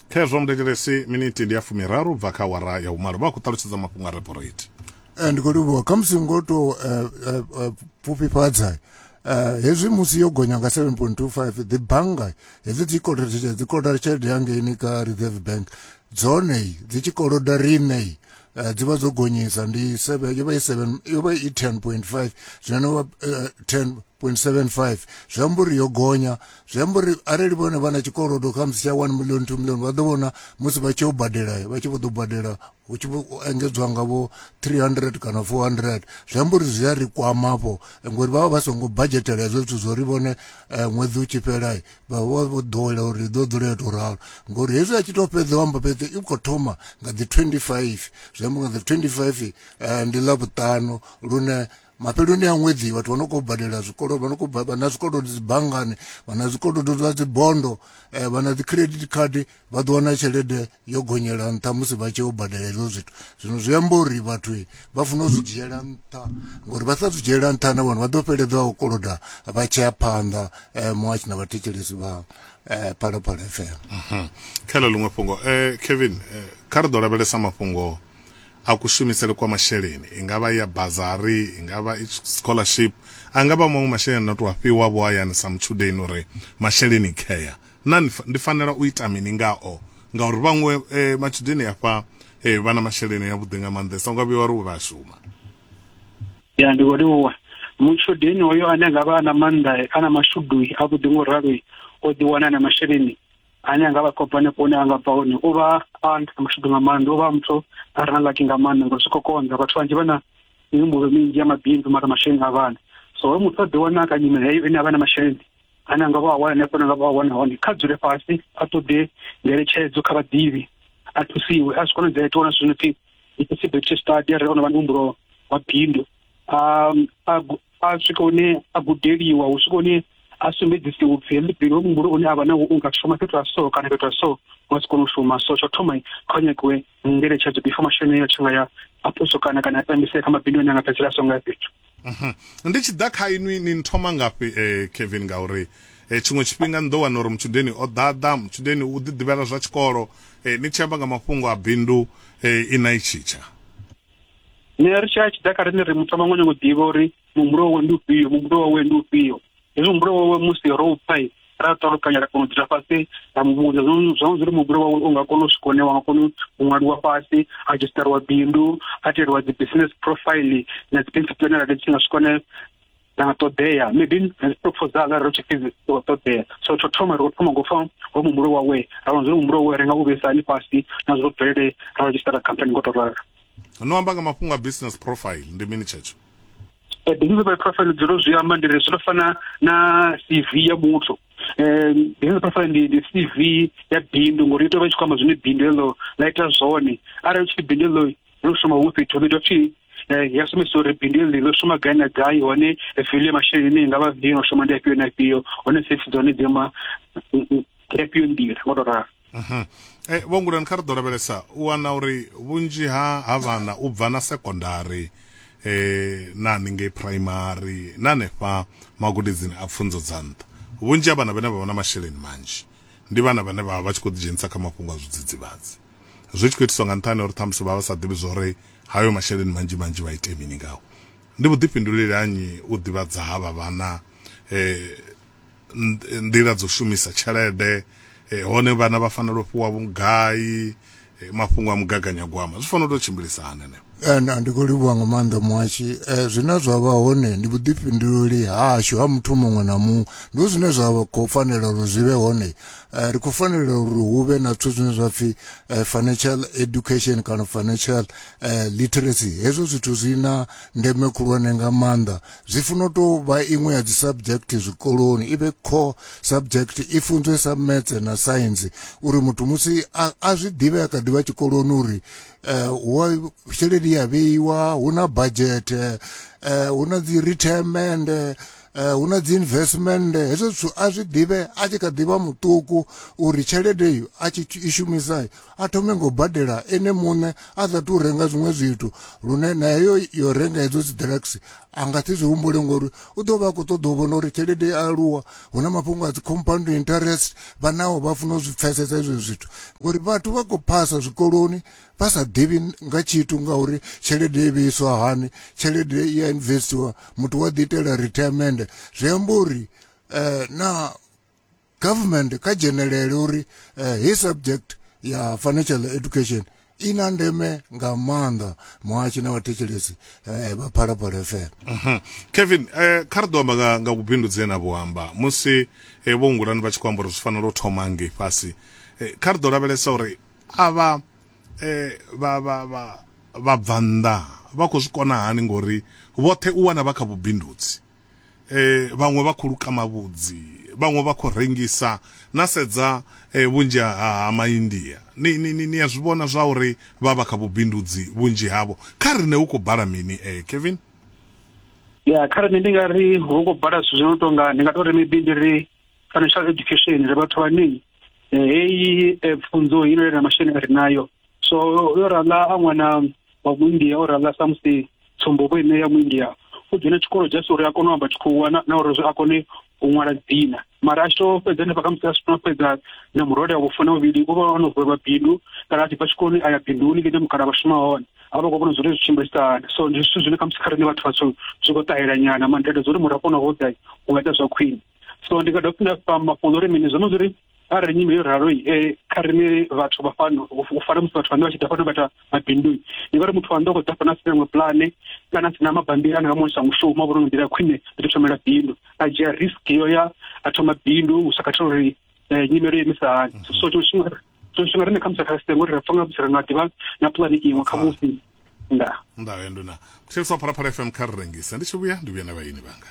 khezwo muthetshelesi minithi ndi ya fumiraru bva kha wara ya vhumalo vha khou ṱalutshedza mafhungo a reporate eh, ndi khou livhuwa kha musi ngo tou eh, eh, pfufhifhadza Eh, hezwi musi yo gonya nga 7.25 dzi bannga hedzi dzi kolodetshedza dzi koloda tshelede yangeini ka reserve bank dzone dzi tshi koloda riṋe eh, dzi vha dzo gonyisa ndi yo vha i 7 yo vha i 10.5 zwino no vha 10 0.75 zwi amba uri yo gonya zwi amba uri arali vhone vha na tshikolodo kha musi tsha 1 million 2 million vha ḓo vhona musi vha tshi yo badela vha tshi vho ḓo badela hu tshi engedzwa ngavho 300 kana 400 zwi amba uri zwi a ri kwama vho ngori vha vha vha songo budgetela hezwo zwithu zwo ri vhone eh, ṅwedzi u tshi fhela vha vha vho ḓowela uri ḓo dzula yo tou ralo ngori hezwi a tshi tou fhedza amba fhedza i khou thoma nga dzi 25 zwi amba nga dzi 25 eh, ndi ḽa vhuṱanu lune mafheloni a ṅwedzi vhathu vha no khou badela zwikolo vha no khou vha na zwikolodo dzi banngani vha na zwikolodo zwa dzi bondo eh, vha na dzi credit card vha ḓo wana tshelede yo gonyela nṱha musi vha tshi yo badela hezwo zwithu zwino zwi amba uri vhathu eh, vha funa u zwi dzhiela nṱha ngori vha sa zwi dzhiela nṱha na vhone vha ḓo fheledza u koloda vha tshea phanḓa eh, muhatshi na vhathetshelesi vha phalaphala fm mhm. kha ḽo ḽiṅwe fhungo kevin kha ri ḓo lavhelesa mafhungo a kushumisele kwa masheleni, i nga vha i ya bazari, i nga vha i scholarship, a nga vha maṅwe masheleni a no tou a fhiwa vho hayani sa mutshudeni uri masheleni care. Naa ndi fanela u ita mini ngao? Ngauri vhaṅwe matshudeni afha vha na masheleni avhuḓi nga maanḓesa, u nga vhuya wa ri u vha a shuma. Ya, ndi khou livhuwa. Mutshudeni hoyo ane a nga vha a na maanḓa, a na mashudu avhuḓi nga u ralo, o ḓiwana a na masheleni. ane anga vha kopane hone anga bva hone u vha a nṱha mashudu nga maanḓa u vha muthu a re na laki nga maanḓa ngori zwi khou konḓa vhathu vhanzhi vha na mihumbulo minzhi ya mabindu mara masheleni a vhana so hoyo muthu a ḓi wana kha nyimele heyo ine a vha na masheleni ane anga vha a wana hanefho anga vha a wana hone kha dzule fhasi a ṱoḓe ngeletshedzo kha vhaḓivhi a thusiwe a zwi konadzea itiwa na zwino pfi i possibility study a re ono vha na mihumbulo wa bindu a a swika hune a gudeliwa hu swika hune a sumbedzise upfi heḽi pilo hoyu muhumbulo une a vha nawo u nga shuma fhethu ha so kana fhethu ha so u nga si kone u shuma so tsha thoma kha u nyagiwe ngeletshedzo before masheleni ayo a tshi nga ya a puso kana kana a tambisea kha mabindu ane a nga fhedzisela a songo ya fhethu Mhm. ndi tshi ḓa kha inwi ni nthoma ngafhi eh, kevin ngauri eh, tshiṅwe tshifhinga ni ḓo wana uri mutshudeni o ḓaḓa mutshudeni u ḓiḓivhela zwa tshikolo eh, ni tshi amba nga mafhungo a bindu eh, i na i tshitsha ne ri tshaya tshi ḓa kha rine ri muthu vhaṅwe nyongo ḓivha uri muhumbulo wawe ndi ufhio muhumbulo wawe ndi ufhio hezwi muhumbulo wawe musi ro u pfai ra ṱalukanya ra kona u dzula fhasi ra muvhudza zwawe zwi ri muhumbulo wawe u nga kona u swika hune wa nga kona u ṅwaliwa fhasi a dzhisitariwa bindu a teliwa dzi business profile na dzi bensi plan ra tshi nga swika hone na ṱoḓea maybe ri propose nga ro tshifhedzi ṱoḓea so tsho thoma ri khou thoma ngo fa ho muhumbulo wawe ra vha zwi muhumbulo wawe ri nga u vhesa hani fhasi na zwo bvelele ra registera company ngo to rara no amba nga mafhungo a business profile ndi mini tshetsho eh, business profile profile dzi ro zwi amba ndi ri zwi fana na CV ya muthu eh business profile ndi ndi CV ya bindu ngori ito vha tshi khou amba zwine bindu ḽo ḽa ita zwone arali tshi bindu ḽo ḽo shuma hu fhethu hu ḓo pfhi eh, ya sumbedzisa uri bindu ḽi ḽo shuma gai na gai hone fiḽu ya masheleni ine i nga vha ndi no shuma ndi afhio na afhio hone safety dza hone dzi amba mm, mm, ndi afhio nḓila ngo to ralo mhm. eh, vho ngulani kha ri ḓo lavhelesa u wana uri vhunzhi ha ha vhana u bva na sekondari eh na haningei primary na hanefha magudedzini a pfunzo dza nṱha vhunzhi ha vhana vhane vha vha na masheleni manzhi ndi vhana vhane vha vha tshi khou ḓidzhenisa kha mafhungo a zwidzidzivhadzi zwi tshi khou itiswa nga nṱhani uri ṱhamusi vha vha sa ḓivhi zwo ri hayo masheleni manzhi manzhi vha ite mini ngao ndi vhuḓifhinduleli hanyi u ḓivhadza ha vha vhana um nḓila dzo shumisa tshelede eh, hone vhana vha fanela u fhiwa vhugai eh, mafhungo a mugaganyagwama zwi fanela u tou tshimbilisa hani And ndi khou livhuwa nga maanḓa muhashi eh, zwine zwa vha hone ndi vhuḓifhinduleli hashu ha muthu muṅwe na muṅwe ndi zwine zwa khou fanela uri zwi vhe hone eh, ri khou fanela uri hu vhe na zwithu zwine zwa pfhi eh, financial education kana financial eh, literacy hezwo zwithu zwi na ndeme khulwane nga maanḓa zwi funa u tou vha iṅwe ya dzi subject zwikoloni i vhe core subject i funzwe sa metse na science uri muthu musi a zwi ḓivhe a kha ḓivha tshikoloni uri eh, hu a tshelede ya vheiwa hu na budget eh, hu na dzi retirement eh, hu na dzi investment hezwo zwithu a zwi ḓivhe a tshi kha ḓivha muṱuku uri tshelede iyo a tshi i shumisa a thome ngo badela ene muṋe a sa tu renga zwiṅwe zwithu lune na heyo yo renga hedzo dzi drugs a nga si zwi humbule ngori u ḓo vha a khou ṱoḓa u vhona uri tshelede ya aluwa hu na mafhungo a dzi compound interest vha naho vha funa u zwi pfhesesa izwo zwithu ngori vhathu vha khou phasa zwikoloni vha sa ḓivhi nga tshithu ngauri tshelede i vheiswa hani tshelede i ya investiwa muthu wa ḓi itela retirement zwi amba uri um na government kha dzhenelele uri uh, his subject ya financial education i na ndeme nga maanḓa muhashi na vhathetshelesi eh, vha phalaphala fm mhm. kevin eh, kha ri ḓo amba nga vhubindudzi ena vho amba musi eh, vho ngulani vha tshi khou amba uri zwi fanela u thoma ngei fhasi kha ri ḓo lavhelesa uri avha vha vha vha vha bva nnḓa vha khou zwi kona hani ngori vhoṱhe u wana vha kha vhubindudzi eh, vhaṅwe vha khou luka mavhudzi vhaṅwe vha khou rengisa na sedza eh, vhunzhi ha, ha maindia ni, ni, ni, ni a zwi vhona zwa uri vha vha kha vhubindudzi vhunzhi havho kha rine hu khou bala mini eh, kevin ya kha rine ndi nga ri hu khou bala zwithu zwi no tonga ndi nga to ri maybe ndi ri financial education ri vhathu vhane eh, heyi eh, pfunzo ino yelana masheleni a ri nayo so yo rala a ṅwana wa muindia o rala samusi tsumbo vho ine ya muindia u dzhena tshikolo just uri a kone u amba tshikhuwa na uri a kone u ṅwala dzina mara a tshi to fhedza hanefha khamusi a sitona fhedza na murole wa vhufuna vhuvhili u vha ono vhevha bindu kana a tshi bva tshikoloni a ya binduni ḽine mukala vha shuma hone a vha khou vhona zwori zwi tshimbilisa hani so ndi zwithu zwine khamusi kha riṋe vhathu vhatswu zwi khou ṱahela nyana mandete zwa uri murafho na hoḓa u nga ita zwa khwine so ndi nga dovha fhindafha mafhungo uri mini zwo no zwi ri arali nyimele yo ralo eh, kha rine vhathu vha fano u fana musi vhathu vhane vha tshi ḓa fano vha ita mabindu ni vha ri muthu wa ndo khou ḓa fano a sina iṅwe pulane kana a sina mabambiri ane nga muonisa mushumo a vhona nga nḓila ya khwine ndi ḓo thomela bindu a dzhia risk yo ya a thoma bindu u sa khathela uri eh, nyimelo yo imisa hani so tshiṅwe tshifhinga so tshifhinga rine khamusi kha sitengo ri ra pfa nga musi ri nga ḓivha na pulane iṅwe khamusi nda nda ya nduna muthelisa phalaphala fm kha ri rengise ndi tshi vhuya ndi vhuya na vhaini vhanga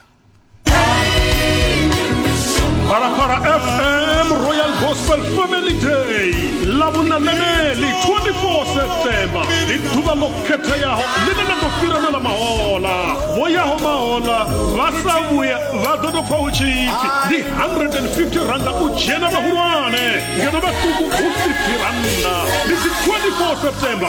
Parapara FM Royal Gospel Family Day lavhunaneneli 24 septemba ndi ḓuvha ḽo khetheaho ḽine na ḓo fhirana na mahola vho yaho mahola vha sa vhuya vha ḓo tou pfa hu tshi pfi ndi 150 randa u dzhena vhahulwane ngeno vhaṱuku hu 50 randa ndi dzi 24 septemba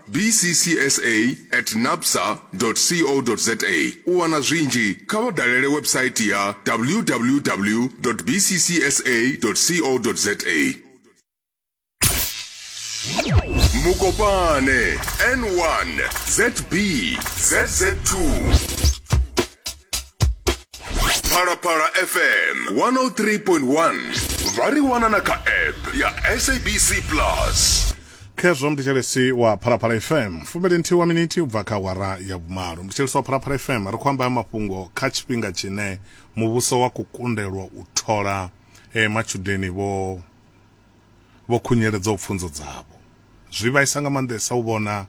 bccsa at nabsa co za U wana zwinzhi, kha vha dalele website ya www bccsa co za. Mukopane, N1, ZB, ZZ2. Phalaphala FM 103.1 vha ri wana na kha app ya SABC Plus. Khezwo muthetshelesi wa Phalaphala FM, fumili nthihi wa minithi ubva kha awara ya vhumalo. Muthetshelesi wa Phalaphala FM, ri khou amba ha mafhungo kha tshifhinga tshine muvhuso wa khou kundelwa u thola matshudeni vho vho khunyeledzaho pfunzo dzavho. Zwi vhaisa nga maanḓesa u vhona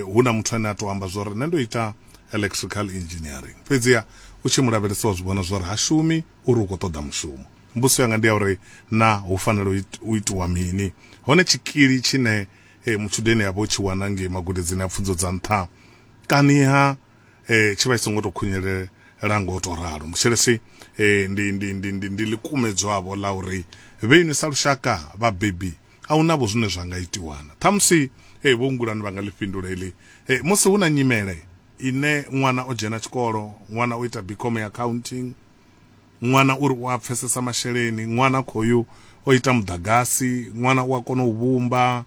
hu na muthu ane a tou amba zwori nṋe ndo ita electrical engineering fhedziha u tshi mu lavhelesa wa zwi vhona zwori ha shumi uri u khou ṱoḓa mushumo. Mbudziso yanga ndi ya uri na hu fanela u itiwa mini hone tshikili tshine eh, mutshudeni a vha o tshi wana ngei magudedzini a pfunzo dza nṱha kaniha eh, tshi vha tshi songo tou khunyelela ngo tou ralo mushelesi eh, ndi, ndi, ndi, ndi, ndi ḽikumedzwavho ḽa uri vhe inwi sa lushaka vhabebi a hu navho zwine zwa nga itiwana ṱhamusi eh, vho ngulani vha nga ḽi fhindula heḽi eh, musi hu na nyimele ine ṅwana o dzhena tshikolo ṅwana o ita bicom ya accounting Ṅwana uri u a pfesesa masheleni, ṅwana khoyu o ita muḓagasi, ṅwana u a kona u vhumba,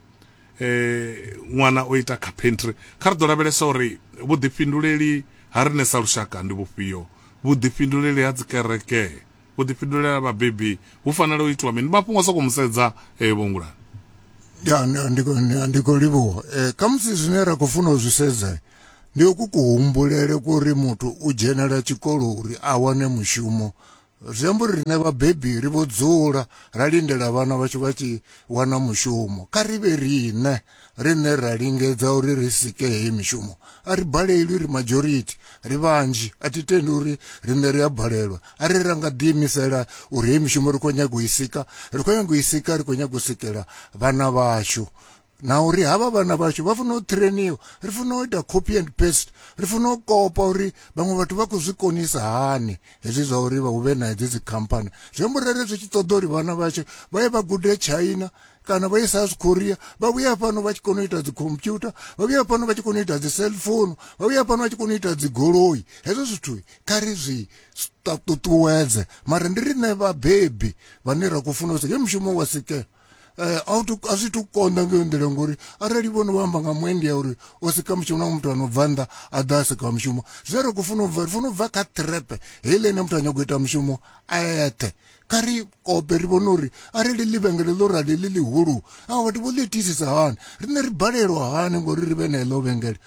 ṅwana o ita carpentry. Kha ri ḓo lavhelesa uri vhuḓifhinduleli ha riṋe sa lushaka ndi vhufhio, vhuḓifhinduleli ha dzikereke, vhuḓifhinduleli ha vhabebi hu fanela u itiwa mini. Ndi mafhungo a sokou mu sedza Vho Ngulani. Ya, ndi khou livhuwa. Khamusi zwine ra khou funa u zwi sedza Ndi ku kuhumbulele kwa uri muthu u dzhenela tshikolo uri a wane mushumo zwi amba uri riṋe vhabebi ri vho dzula ra lindela vhana vhashu vha tshi wana mushumo kha ri vhe riṋe riṋe ra lingedza uri ri sike heyi mishumo a ri balelwi ri majority ri vhanzhi a thi tendi uri riṋe ri a balelwa a ri ra nga ḓiimisela uri heyi mishumo ri khou nyaga u i sika ri khou nyaga u i sika ri khou nyaga u sikela vhana vhashu na uri havha vhana vhashu vha funa u trainiwa ri funa u ita copy and paste ri funa u kopa uri vhaṅwe vhathu vha khou zwi konisa hani hezwi zwa uri vha huvhe na hedzi dzi khamphani zwi amba uri zwi tshi ṱoḓa uri vhana vhashu vha ye vha gude china kana vha ye south korea vha vhuya fhano vha tshi kona u ita dzi computer vha vhuya fhano vha tshi kona u ita dzi cell phone vha vhuya fhano vha tshi kona u ita dzi goloi hezwo zwithu kha ri zwi ṱuṱuwedze mara ndi riṋe vhabebi vhane ra khou funa u sike mushumo wa sikela eh, a zwi to konḓa ngeyo nḓila ngori arali vhono vha amba nga muendi ya uri o sika mushumo na muthu ano bva nnḓa a ḓa a sika mushumo zwe ri khou funa u bva ri funa u bva kha trepe heile ine muthu a nyago ita mushumo a eṱhe kha ri kope ri vhone uri arali ḽivhengele ḽo rali ḽi ḽihulu a vhathu vho ḽi itisisa hani riṋe ri balelwa hani ngori ri vhe na eḽo vhengele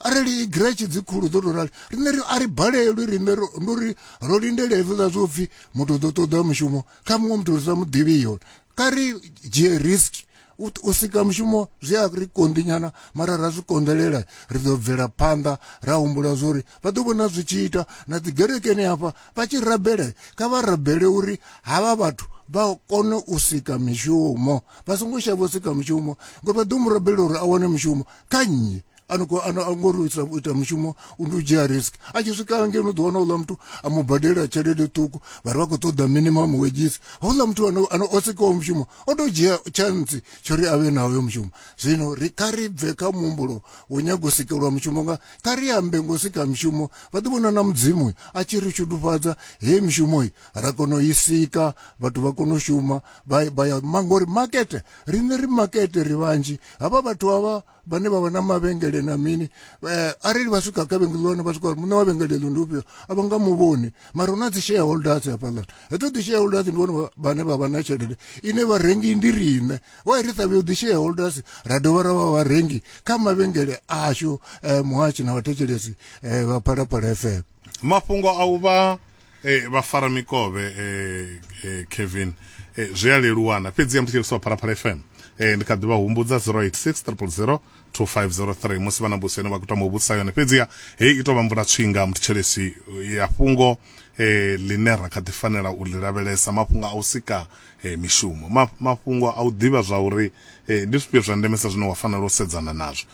arali giretshi dzi khulu dzo tou rali riṋe ri a ri balelwi riṋe ndo ri ro lindela hezwiḽa zwo pfhi muthu ḓo ṱoḓa mushumo kha muṅwe muthu ri sa mu ḓivhi yone kha ri dzhie risk u sika mushumo zwi a ri konḓinyana mara ra zwi konḓelela ri ḓo bvela phanḓa ra humbula zwori vha ḓo vhona zwi tshi ita na dzi gerekeni hafha vha tshi rabele kha vha rabele uri havha vhathu vha kone u sika mishumo vha songo shavha u sika mushumo ngori vha ḓo mu rabela uri a wane mushumo kha nnyi anoko ano angori ita ita mushumo undodzhia risk a tshi swika hange no ḓiwana uḽa muthu a mu badela tshelede ṱuku vha ri vha khou ṱoḓa minimum wages houḽa muthu ano ano o sikaho mushumo o to dzhia chance tsho ri avhe na hoyo mushumo zwino ri kha ri bve kha muhumbulo wo nyago sikelwa mushumo nga kha ri ambe ngo sika mushumo vha ḓi vhona na mudzimu a tshi ri shudufhadza he mushumo yi ra kona u i sika vhathu vha kona u shuma vha vha ya mangori market riṋe ri market ri vhanzhi havha vhathu havha vhane vha vha na mavhengele na mini eh, arali vha swika ka vhengele wana vha swika uri muṋe wa vhengele ḽo ndi ufhio a vha nga mu vhoni mara hu na dzi shareholders hafhaḽani hedzo dzi shareholders ndi vhone vhane vha vha na tshelede ine vharengi ndi riṋe wa ri sa vhuyo dzi shareholders ra dovha ra vha vharengi kha mavhengele ashu eh, muhashi na vhathetshelesi eh, vha phalaphala fm mafhungo a u vha eh, vha fara mikovhe eh, eh, kevin eh, zwi a leluwana fhedzi ya ndi tshiriso phalaphala fm eh, ndi kha ḓi vha humbudza 086 2503 musi vha na mbuso ine vha khou tama u vhudzisa yone fhedziha heyi i tou vha mvula tswinga muthetshelesi ya fhungo eh, line ra kha ḓi fanela u ḽi lavhelesa mafhungo a u sika eh, mishumo Ma, mafhungo a u ḓivha zwa uri eh, ndi zwifhio zwa ndemesa zwine wa fanela u sedzana nazwo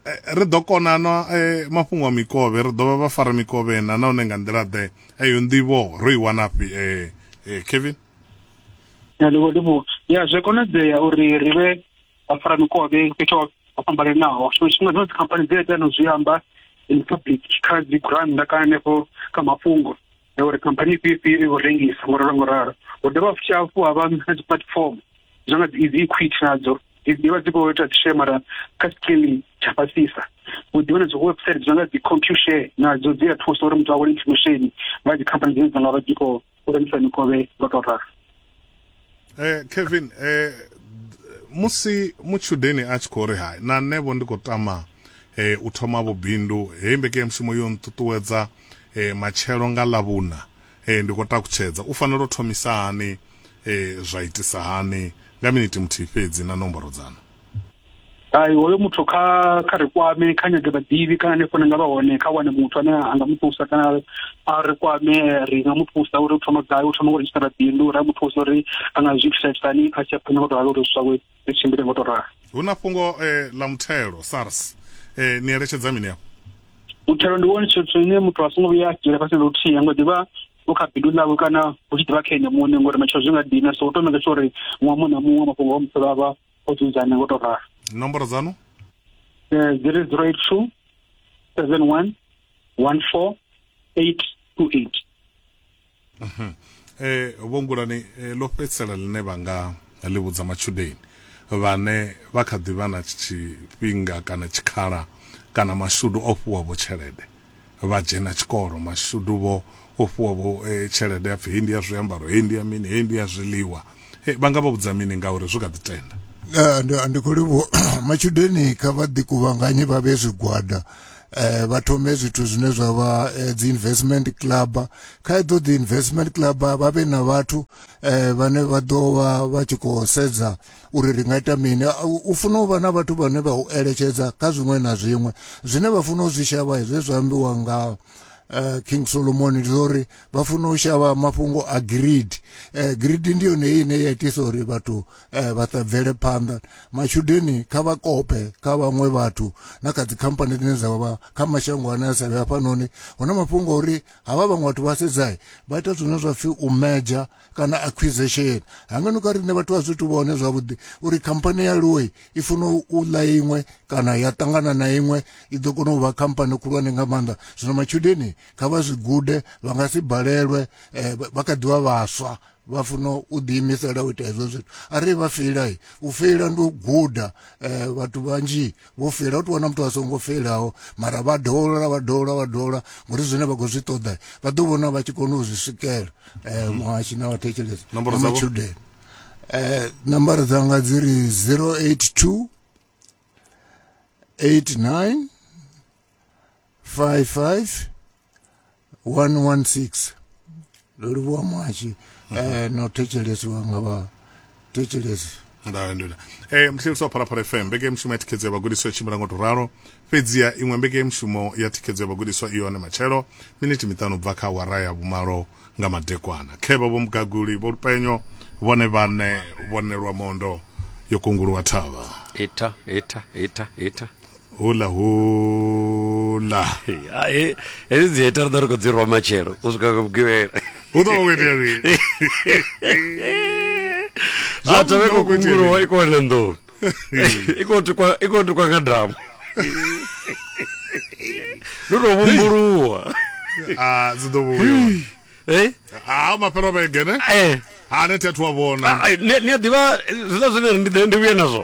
eh, ri ḓo kona na eh, mafhungo a mikovhe ri ḓovha vha fara mikovhe na nahone nga nḓila ḓe eyo nḓivho ro i wanafhi eh, eh, kevin ndivho ya zwi konadzea uri ri vhe vha fara mikovhe fhethu ho fhambananaho tshiṅwe tshifhinga dzino dzikhamphani dzi a tea no zwi amba in public kha dzi gurannda kana hanefho kha mafhungo na uri khamphani ifhio ifhio i khou rengisa ngo ralo ngo ralo hu dovha futhi hafhu ha vha na dzi platform zwa nga dzi equity nadzo dzi ḓivha dzi khou ita dzishe mara kha scale tsha fhasisa hu ḓivha na dzi website zwa nga dzi compushare nadzo dzi a thusa uri muthu a wane information nga dzi khamphani dzine dza nga vha dzi khou rengisa mikovhe nga to ralo eh Kevin eh musi mutshudeni a tshi khou ri hai na nṋe vho ndi khou tama eh u thoma vhubindu heyi mbekanyamushumo yo nṱuṱuwedza eh matshelo nga ḽavhuna eh ndi khou takutshedza u fanela u thomisa hani eh zwa itisa hani nga miniti muthihi fhedzi na nomboro dzanu ai hoyo muthu kha kha ri kwame kha nyage vhaḓivhi kana hanefho na nga vha hone kha wane muthu ane a nga mu thusa kana a ri kwame ri nga mu thusa uri u thoma gai u thoma u redzhisitara bindu ra mu thusa uri a nga zwi thithaisani a tshi a phanḓa ngo to ralo uri zwi zwawe ri tshimbile ngo to ralo hu na fhungo eh, ḽa muthelo sars eh, ni eletshedza mini afho muthelo ndi wone tshithu ine muthu a songo vhuya a dzhiela fhasi luthihi ngo ḓivha u kha bindu ḽawe kana u tshi ḓivha kha ene muṋe ngori matshelo zwi nga dina so u to maker sure uri muṅwe muṅwe na muṅwe mafhungo o musolo avha o dzudzanya ngo to ralo nomboro dzanu eh, zero zero eight two seven one one four eight two eight mhm. eh vho ngulani eh, ḽo fhedzisela ḽine vha nga ḽi vhudza matshudeni vhane vha kha ḓi vha na tshifhinga kana tshikhala kana mashudu o fhiwavho tshelede vha dzhena tshikolo. Mashudu vho o fhiwa vho tshelede ya pfi hei ndi ya zwiambaro, hei ndi ya mini, hei ndi ya zwiḽiwa. Vha nga vha vhudza mini ngauri zwi kha ḓi tenda? Eh, ndi ndi khou livhuwa matshudeni kha vha ḓi kuvhanganye vha vhe zwigwada eh vha thome zwithu zwine zwa vha eh, dzi investment club kha edzo dzi investment club vha vhe na vhathu eh vhane vha ḓo vha vha tshi khou sedza uri ri nga ita mini u funa u vha na vhathu vhane vha u eletshedza kha zwiṅwe na zwiṅwe zwine vha funa u zwi shavha zwe zwa ambiwa nga uh, king solomoni ndi uri vha funa u shavha mafhungo a greed uh, eh, greed ndi yone heyi ine ya itisa uri vhathu uh, vha ṱabvele phanḓa matshudeni kha vha kope kha vhaṅwe vhathu na kha dzikhamphani dzine dza vha kha mashango ane a sa vhe hafhanoni hu na mafhungo uri havha vhaṅwe vhathu vha sedzai vha ita zwine zwa pfhi u meja kana acquisition hanga no ka riṋe vhathu a zwi tu vhone zwavhuḓi uri khamphani ya loi i funa u ḽa iṅwe kana ya ṱangana na iṅwe i ḓo kona u vha khamphani khulwane nga maanḓa zwino matshudeni kha vha zwi gude vha nga si balelwe eh, vha kha ḓivha vhaswa vha funa u ḓiimisela u ita hezwo zwithu arali vha feila u feila ndi u guda um vhathu vhanzhi vho fela u tou wana muthu a songo felaho mara vha dola vha dola vha dola ngori zwine vha khou zwi ṱoḓa vha ḓo vhona vha tshi kona u zwi swikela um muhashi na vhathetshelesi na matshudeni um nambara dzanga dzi ri zero eight two eight nine 55 116 ndo livhuwa mwashi eh, no thetshelesiwa nga vha thetshelesi nda ndoda eh mhleliswa phalaphala fm mbekemushumo ya thikhedzo ya vhagudiswa i tshimbila ngo to ralo fhedziha iṅwe mbekemushumo ya thikhedzo ya vhagudiswa i hone matshelo miniti miṱanu bva kha awara ya vhumalo nga madekwana khevha vho mugaguli vho lupenyo vhone vhane vhonelwa mondo yo kunguluwa thavha Ita, ita, ita, ita. hula hula hai hedzi dzi hater ḓo ri khou dzi rwa matshelo u swika nga vhugivhela hu ḓo vha khou itea mini zwa thavhe khou kunguruwa i khou wana nḓuni i khou tukwa i khou tukwa nga damu ndo tou vhumbuluwa a dzi ḓo vhuya eh ha mafhelo vhege ne eh ha ne thi athu wa vhona Ai, ni ni a ḓivha zwiḽa zwine ri ndi ḓe- ndi vhuye nazwo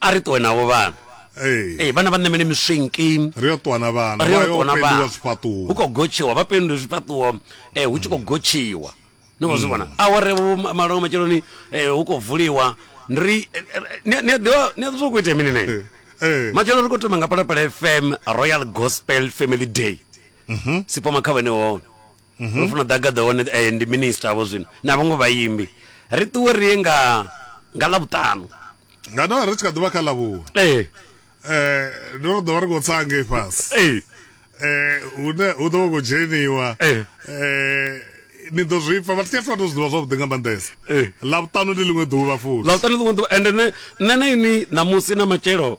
a ri ṱuwe navho vhana Ee. ee vhana vha ṋamele miswinki ri yo ṱuwa na vhana ri vha yo yo ṱuwa na pendiwa vhana hu zwifhaṱuwo khou gotshiwa vha pendiwe zwifhaṱuwo um hu tshi khou gotshiwa ni khou zwi vhona aware vho ma- malongo matsheloni um hu khou vuliwa ndi ri eh, eh, ni a- ni a ḓivha ni a ḓivha zwa khou itea mini na ini Ee. matshelo ri khou thoma nga palapala fm royal gospel family day sipoma kha vhene hone mhm. ro funa ḓa gaḓa hone eh, ndi minister vho zwino na vhaṅwe vhaimbi ri ṱuwe ri ye nga nga ḽavhuṱanu nga no ri tshi kha ḓuvha kha ḽavhuwa ee eh, ndo ro ḓo vha ri khou tsa ngei fhasi ee eh, hune hu ḓo vha khou dzheniwa ee ni ḓo zwi pfa vhathu tshathu vha to zwi ḓivha zwavhuḓi nga maanḓesa ḽavhuṱanu ndi ḽiṅwe ḓuvha futhi ḽavhuṱanu ḽiṅwe ḓuvha ende nṋe na ini ṋamusi na matshelo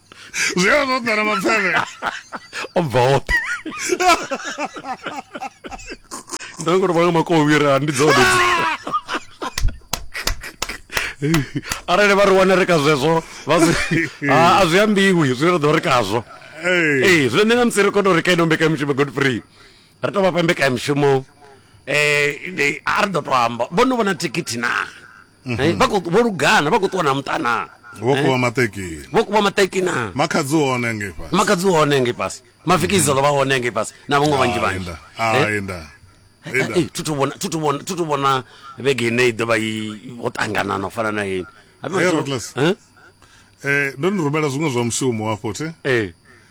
Så jag har fått när de var fem år. Om vad? Ndio kwa sababu mako wira ndi dzone. Arali vha ri wana ri kha zwezwo vha zwi ha a zwi ambiwi zwi ri ḓo ri khazwo. Hey. Ee zwine nṋe na musi ri kono ri kha ino mbekamishumo Godfrey ri tou vha fha mbekamishumo eh ndi- a ri ḓo tou amba vho no vhona thikhithi naa Mhm. Eh, vha khou- vho lugana vha khou ṱuwa na muṱa naa vho Eh, kuva maṱekini vho kuva maṱeki naa makhadzi hone ngei fhasi makadzi hone ngei fhasi mafikizelo vha hone ngei fhasi na vhaṅwe vhanzhi vhanzhi Inda. Ah, Eh, inda. Inda. eh, thi thu vhona- thi thu vhona- thi thu vhona vhege ine i ḓo vha i ho ṱangana na u fana na ini Hey, Ruthless. Eh, ndo ni rumela zwiṅwe zwa mushumo hafho thi eh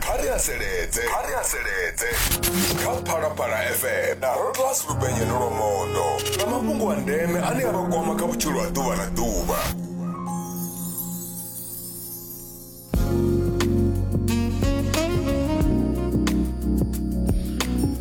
kha ri haseledze kha ri haseledze kha phalaphala fm na rotllas lupenye nolomondo na mafhungo a ndeme ane a vha kwama kha vhutshilo ha ḓuvha na ḓuvha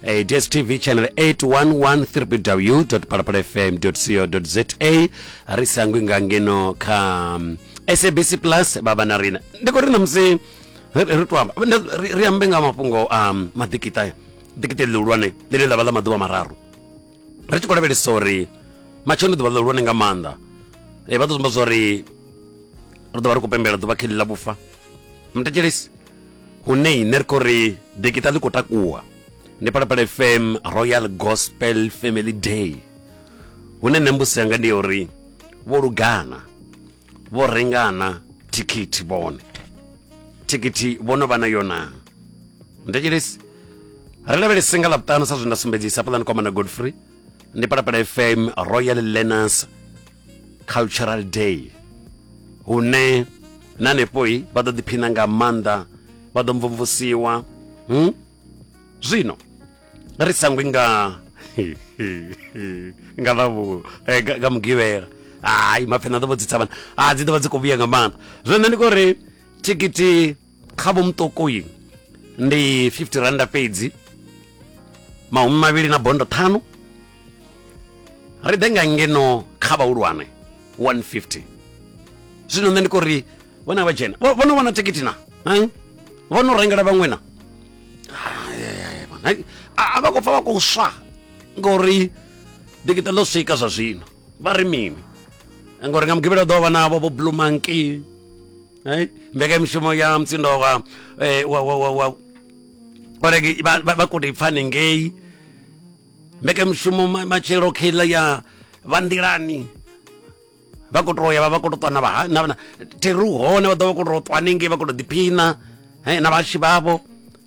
Uh, dstv channel 811 www.palapalafm co za ri sangwi nga ngeno kha um, sabc plus baba na rina ndi khou ri na musi ri ri to amba nda- ri ri ambe nga mafhungo a um, maḓikita ḓikita ḽihulwane ḽine ḽa vha ḽa maḓuvha mararu ri tshi khou lavhelesa uri matshelo ḓuvha ḽihulwane nga maanḓa Eh, vha ḓo zumba zwa uri ri ḓo vha ri khou pembela ḓuvha kheli ḽa vhufa mutetshelesi hune ne ri khou ri dikita ḽi khou takuwa ndi palapala fm royal gospel family day hune nṋe mbusi yanga ndi ya uri vho lugana vho rengana thikhithi vhone thikhithi vho no vha na yona ndetshelesi ri lavhelese nga ḽavhuṱanu sa zwe nda sumbedzisa pulani kwamana godfrey ndi palapala fm royal learners cultural day hune na hanefhoi vha ḓo ḓiphina nga maanḓa vha ḓo mvumvusiwa hmm? zwino ri sangwi nga nga ḽavhu eh, nga nga mugivhela hayi mapfena ḓo vho dzi tsavhana a dzi ḓo vha dzi khou vhuya nga maanḓa zwino nṋe ndi khou ri thikiti kha vho muṱuku uyu ndi 50 randa fhedzi mahumi mavhili na bondo ṱhanu ri ḓe nga ngeno kha vhahulwane 150 zwino nṋe ndi kho ri vhona vha dzhena vho no vhona thikhithi na vho no rengela vhaṅwe na a vha khou pfa vha khou swa ngori dikita ḽo swika zwa zwino vha ri mini ngori nga mugivhela ḓo vha navho vho blue monkey Hai, mbekanyamushumo ya mutsindo wa eh, wa wa wa wa orege vha vha- vha kude pfani ngei mbekanyamushumo ma- matshelo kheiḽa ya vha nḓilani vha khou tou ya vha vha khou tou ṱwa na vha na na- theru hone vha ḓo vha khou tou ṱwa hanengei vha khou tou ḓiphina eh, na vhashi vhavho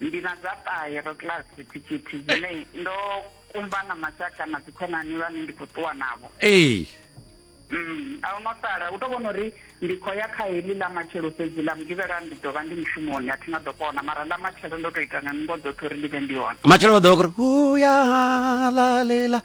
Ndi na dza ṱahe ro kiḽasi thikhithi dzine ndo kumba na mashaka na dzikhonani vhane ndi khou ṱuwa navho. Ee. Mm, a hu na sala. U tou vhona uri ndi khou ya kha heḽi ḽa matshelo fhedzi, ḽa Mugivhela ndi ḓo vha ndi mushumoni, a thi nga ḓo kona. Mara ḽa matshelo ndo tou ita nga nungo dzoṱhe uri ndi vhe ndi hone. Matshelo vha ḓo vha khou ri, Hu ya halalela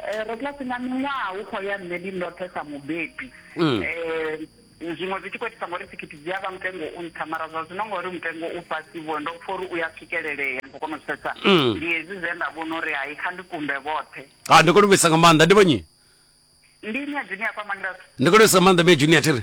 Eh, ro kiḽasi nga miṅwaha hu khou ya nṋe ndi ndoṱhe sa mubebi um zwiṅwe zwi tshi khou itisa ngori thikhithi dzi a vha mutengo u nṱha mara zwa zwino ngori mutengo u fhasi vho ndo pfha uri u ya swikelelea ndi khou kona u zwi pfhesesa Mm. ndi hezwi zwe nda vhona uri hai kha ndi kumbe vhoṱhe ha ndi kone u vhesa nga maanḓa ndi vhonyi ndi ine ya dzine ya kwamangirasi ndi kone u vhesa nga maanḓa me junior thiri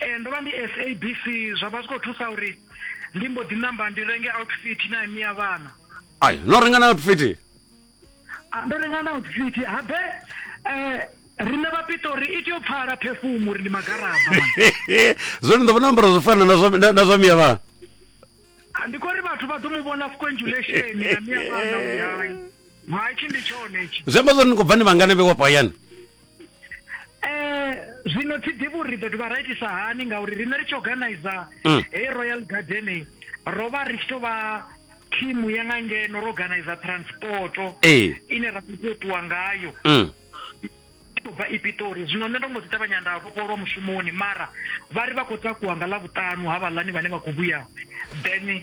Ee ndo vha ndi SABC zwa vha zwi khou thusa uri ndi mbo ḓi namba ndi renge outfit na imi ya vhana. Ai no renga na outfit. Ah, ndo renga na outfit habe eh riṋe vhapitori i tea u pfala phefumu uri ndi magaraba zwone ndo vhona ambara zwo fana na zwa miya vhana ah, ndi khou ri vhathu vha ḓo mu vhona fconjulation ya miya vhana uyayi haitshi ndi tshone itshi zwi amba zwori ni khou bva ni vhangane vhe wapo hayani Eh, zwino thi ḓivhi uri ri ḓo dovha ra itisa hani ngauri riṋe ri tshi organizer Mm. heyi royal gardening ro vha ri tshi tou vha thimu ya nga ngeno ro organizer transporto ee ine ra khou tea u ṱuwa ngayo mm. i khou bva ipitori zwino nṋe ndo mbo ḓi ṱavhanya nda vhofholwa mushumoni mara vha ri vha khou takuwa nga ḽavhuṱanu ha vhaḽani vhane vha khou vhuya then